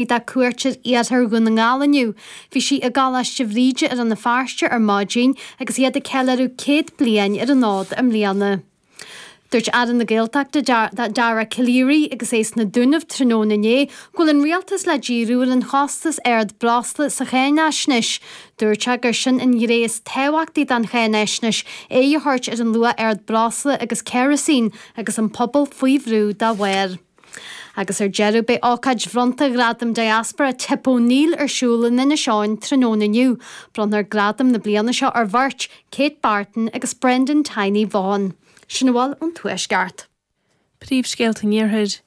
Bhí dá cuairt ar iarthar Dhún na nGall inniu. Bhí sí i gColáiste Bhríde i Rann na Feirste ar maidin agus iad ag ceiliúradh céad bliain ar an fhód i mbliana. Dúirt Aire na Gaeltachta, Dara Calleary, agus é sna Dúnaibh tráthnóna inné, go bhfuil an rialtas le díriú ar an chostas ard breosla sa cháinaisnéis. Dúirt sé gur sin an ghné is tábhachtaí don cháinaisnéis, aghaidh a thabhairt ar an luach ard breosla agus ceirisín agus an pobal faoi bhrú dá bharr. Agus ar deireadh, beidh ócáid bhronnta Ghradam Diaspora Tip O'Neill ar siúl in Inis Eoghain tráthnóna inniu. Bronnfar gradam na bliana seo ar bheirt, Kate Barton agus Brendan Tiny Vaughan. Sin a bhfuil ón Tuaisceart. Príomhscéalta an Iarthair.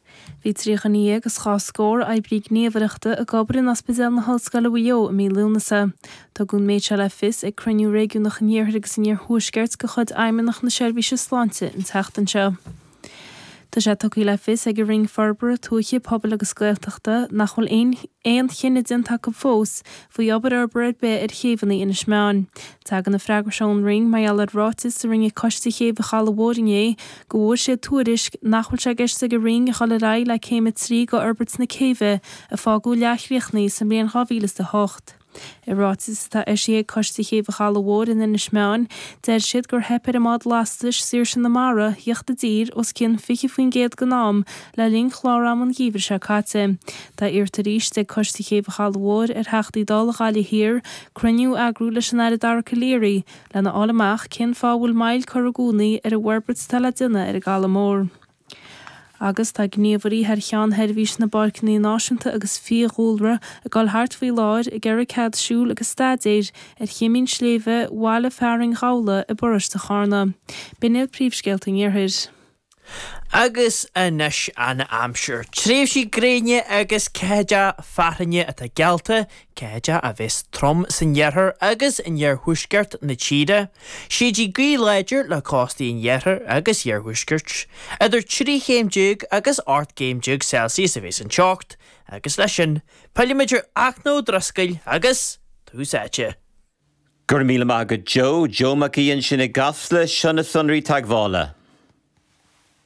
Bhí trí dhuine dhéag is dhá scór oibrí gníomhaireachta ag obair in Ospidéal na hOllscoile Mhaigh Eo i mí Lúnasa. Tugadh an méid seo le fios ag cruinniú réigiúnach an Iarthair agus an Iarthuaiscirt de chuid Fheidhmeannacht na Seirbhíse Sláinte an tseachtain seo. Tá sé tugtha le fios ag an Roinn Forbartha Tuaithe, Pobail agus Gaeltachta nach bhfuil aon chinneadh déanta acu fós faoi obair fhorbartha ar bith ar chéibheanna Inis Meáin. Tagann an freagra seo ón Roinn mar gheall ar ráiteas a rinne Coiste Chéibh an Chalaidh Mhóir inné go bhfuair siad tuairisc nach bhfuil sé i gceist ag an Roinn a dhul ar aghaidh le céim a trí de fhorbairt na céibhe a fágadh leathchríochnaithe sa mbliain 2008. I ráiteas atá eisithe ag Coiste Chéibh an Chalaidh Mhóir in Inis Meáin, deir siad gur theip ar an mbád lastais Saoirse na Mara theacht i dtír os cionn 20% den am le linn chlár ama an gheimhridh seo caite. Tá iarrta arís ag Coiste Chéibh an Chalaidh Mhóir ar Theachtaí Dála Ghaillimh Thiar cruinniú a eagrú leis an Aire Dara Calleary lena fháil amach cén fáth a bhfuil moill curtha i gcónaí ar an bhforbairt atá le déanamh ar an gCaladh Mór. Agus tá gníomhairí thar cheann Sheirbhís na bPáirceanna Náisiúnta agus Fiadhúlra ag dul thart faoi láthair ag iarraidh cead siúil agus staidéir ar choimín sléibhe bhaile fearainn Ghabhla i bparóiste Charna. B'in iad príomhscéalta an Iarthair. Agus anois an aimsir. Tréimhsí gréine agus ceathaideacha fearthainne atá geallta, cuid a bheas trom san iarthar agus in iarthuaisceart na tíre. Séidfidh gaoth láidir le cóstaí an iarthair agus iarthuaiscirt. Idir trí chéim déag agus ocht gcéim déag Celsius a bheas an teocht agus leis sin, pillfimid ar Fhachtna Ó Drisceoil agus Tús Áite. Go raibh míle maith agat Joe. Joe Mac Aoidh ansin i gCasla. Seo na sonraí teagmhála.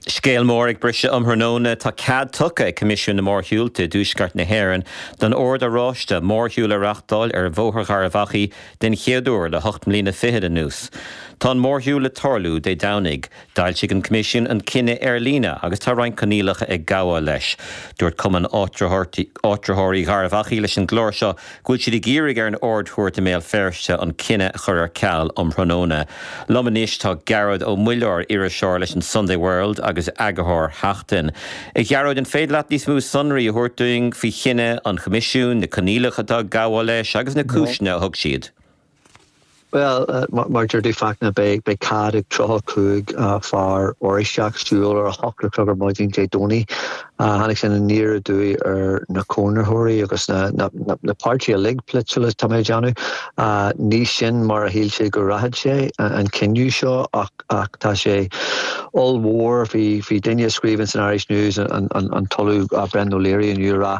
Scéal mór ag briseadh um thráthnóna. Tá cead tugtha ag Coimisiún na Mórshiúlta i dTuaisceart na hÉireann don Ord Oráiste mórshiúl a reáchtáil ar Bhóthar Gharbh Achaidh den chéad uair le hocht mbliana fichead anuas. Tá an mórshiúl le tarlú Dé Domhnaigh. D'fhoilsigh an Coimisiún an cinneadh ar líne agus tá roinnt coinníollacha ag gabháil leis. Dúirt Cumann Áitritheoirí Gharbh Achaidh leis an gclár seo go bhfuil siad ag iarraidh ar an Ard-Chúirt i mBéal Feirste an cinneadh a chur ar ceal um thráthnóna. Liom anois tá Gearóid Ó Muilleoir, iriseoir leis an Sunday World agus eagarthóir Sheachtain. A Ghearóid, an féidir leat níos mó sonraí a thabhairt dúinn faoi chinneadh an Choimisiúin, na coinníollacha atá ag gabháil leis agus na cúiseanna a thug siad? Bhuel, mar deir tú, Fachtna, beidh cead ag 35 fear Oráisteach siúl ar a hocht a chlog ar maidin Dé Domhnaigh. Tháinig sin aniar aduaidh ar na cónaitheoirí agus na páirtithe uilig polaitiúla, tá mé ag déanamh. Ní sin mar a shíl sé go rachadh sé, an cinneadh seo, ach tá sé ollmhór. Bhí duine a scríobhann san Irish News, an tOllamh Brendan O'Leary, inniu ag rá,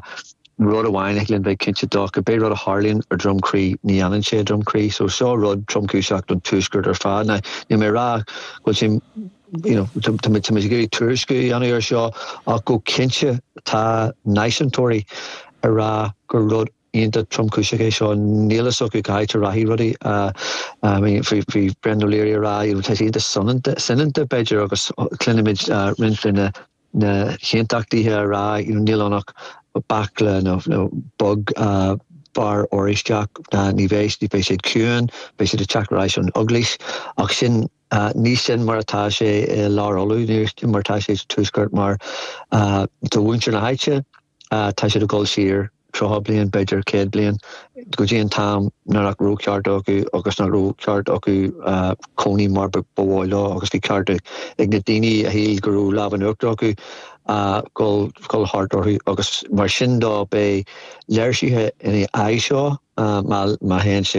Rud amháin a dtig linn bheith cinnte dó, cibé rud a tharlaíonn ar Dhroim Crí, ní fhanann sé i Droim Crí. So seo rud tromchúiseach don Tuaisceart ar fad. Now, níl mé ag rá go bhfuil sé, you know, tá muid ag iarraidh tuairisciú a dhéanamh ar seo, ach go cinnte tá náisiúntóirí ag rá gur rud iontach tromchúiseach é seo. Níl fhios acu cá háit a rachaidh rudaí. I mean, bhí Brendan O'Leary ag rá, tá sé iontach soineanta, soineanta b'fhéidir, agus cluinimid roinnt de na, na haontachtaithe ag rá, you know, níl ann ach baicle, nó, nó beag fear Oráisteach, ná ní bheidh, beidh siad ciúin, beidh siad ag teacht ar ais ón Eaglais. Ach sin, ní sin mar atá sé i lár Uladh, ní sin mar atá sé sa Tuaisceart mar, do mhuintir na háite, Tá siad ag dul siar tríocha bliain, b'fhéidir céad bliain, go dtí an t-am nach raibh cearta acu agus nach raibh ceart acu cónaí mar ba mhaith leo agus bhí ceart ag na daoine a shíl go raibh lámh in uachtar acu a dhul thart orthu. Agus mar sin dó, beidh léirsithe in aghaidh seo má théann sé.